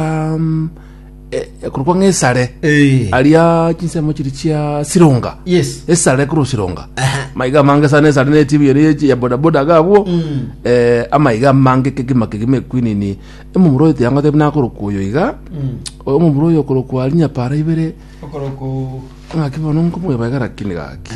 um, eh, eh, korokwa ng'esare Eh. aria chinsemo chiri chia sironga Yes. esare koro sironga Aha. maiga mange sana esare ne tibi yone yechi ya bodaboda gabwo Mm. eh, amaiga mange kegima kegima ekwinini emomuro oyo tiangote buna akorokwa oyo iga Mm. omomuro oyo okorokwa rinyapara ibere Okoroko Ng'aki bono nkomwebagera kende gaki.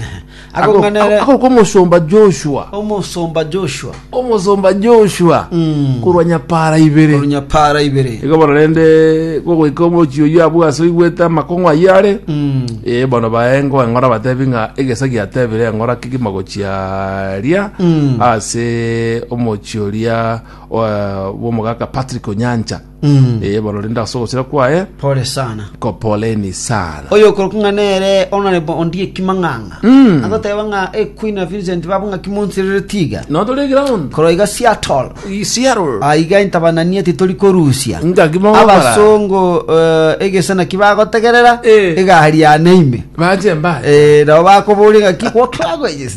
Akong'anere- Agoka omosomba Joshua. Omosomba Joshua Omosomba Joshua. Mm. Korwa nyapara ibere. orunyapara ibere Igo bono rende gogoika omochi oyio abwo ase oigwete amakong'u ayio are. Mm. Eh, bono baengo eng'ora batebi ng'a egesa giatebire eng'ora kegima gochia ria Mm. ase omochi oria eh, bw'omogaka Patrick Onyancha. Mm. ee borore nda ase ogochira kwaye Pole sana. kopoleni sana Oyo okorokwa ng'a nere Honorable Ondie Kimang'ang'a. Mm. Agoteba ng'a e Queen of Vincent babo ng'a kimonsirere tiga. no tore ground Korwa iga Seattle. isiaro aiga intabananie titori korusia Ngaki mogokora. abasongo eh, egese naki bagotegerera Eh. egari yane ime bache mbaye Eh, nabo bakoboria ngaki what languages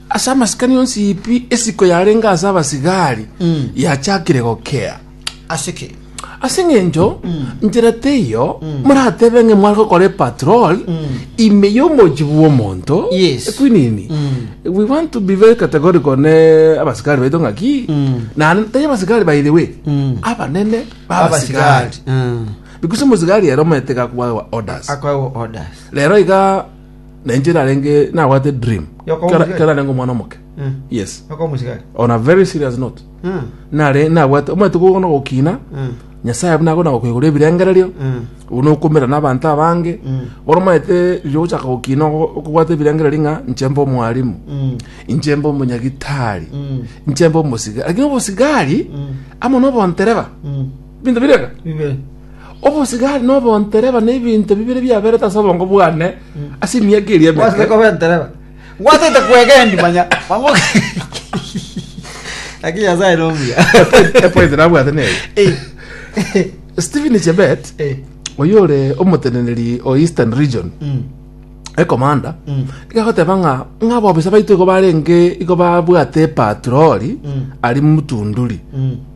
Ase amasikani onsi pi esiko yarenge ase abasigari yachakire gokea. Ase ki? Ase eng'encho nchera teiyo moratebe ng'a mware gokora epatrol ime y'omochie bw'omonto. Yes. Ekwinini. We want to be very categorical ne abasigari baito ng'a ki? Naende tari abasigari by the way. Abanene b'abasigari. Abasigari. Mm. Because omosigari ere omaete gakwawa orders. Akwawa orders. Rero iga na inche narenge nabwate dream Yoko Kera- omugeni. kera narenge omwana omoke Mm. yes Yoko omosigari. on a very serious note Mm. nare nabwate omanyete gokona gokina Mm. nyasaye buna akona gokoigora ebirengererio Mm. uno okomera n'abanto abange Mm. bono omanyete riria ogochaka gokina ogo- okobwata ebirengererio ng'a inche mbe omwalimu Mm. inche mbe omonyagitari Mm. inche mbe omosigari lakini obosigari Mm. amo nobontereba Mm. binto bireka Bibe. Obosigari na obontereba nebinto bibere biaberete ase obongo bwane ase emiaka eria Gwasete emeke. koba entereba. Gwasete kwegendia manya. Mang'oki. Lakini Nyasaye nomuya. Epoint nabwate neye. Eh. Stephen Chebet, Eh. oyo ore omoteneneri o Eastern Region, Mm. ekomanda, Mm. igagoteba ng'a ng'a abobisa baito igo barenge igo babwate epatroli Mm. ari mutunduri. Mm.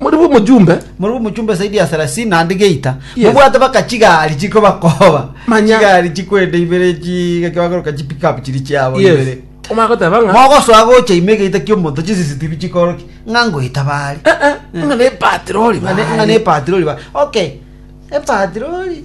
Muri bo mojumbe. Muri bo mojumbe saidi ya thelathini naende geita. Yes. Mobwate baka chigari chiko bakoba. Manya. Chigari chikwenda ibere chi kibagoroka chi pick up chiri chiabo yes. ibere. Omara goteba nga. Mogosoa gocha ime geita kiomonto chi CCTV chikoroki. Nga ngoita bari. Eh eh. Nga ne patroli bari. Nga ne patroli bari. Okay. E patroli.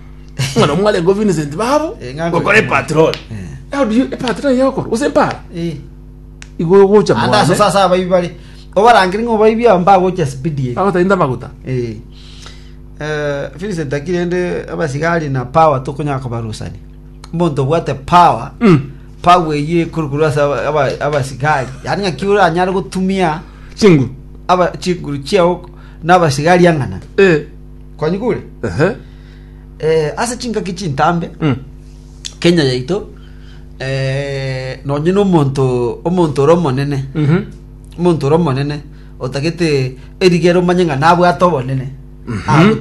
ng'ana mwarengo Vincent babo Eh, ng'ango- gokora epatrol Eh. how do you epatrol yokora use mpara Eh. igo yogocha ande aso mwane sasa abaibi bare obarangire ng'a obaibi aba mbagocha spidi eri agotainda maguta Eh. Eh, Vincent akiri ende abasigari na power tokonyara kobarusani omonto obwate power Mm. power eyio ekorokoro ase aba- aba- abasigari yaani ng'aki oranyare gotumia chinguru aba chinguru chiao nabasigari ang'ana Eh. kwanyigure Ehe. eh, ase chingaki chintambe Mm. kenya yaito eh, nonye nomonto omonto ore omonene Mhm. omonto ore omonene otagete erigero omanye ng'a nabwate obonene Mhm. Agotwa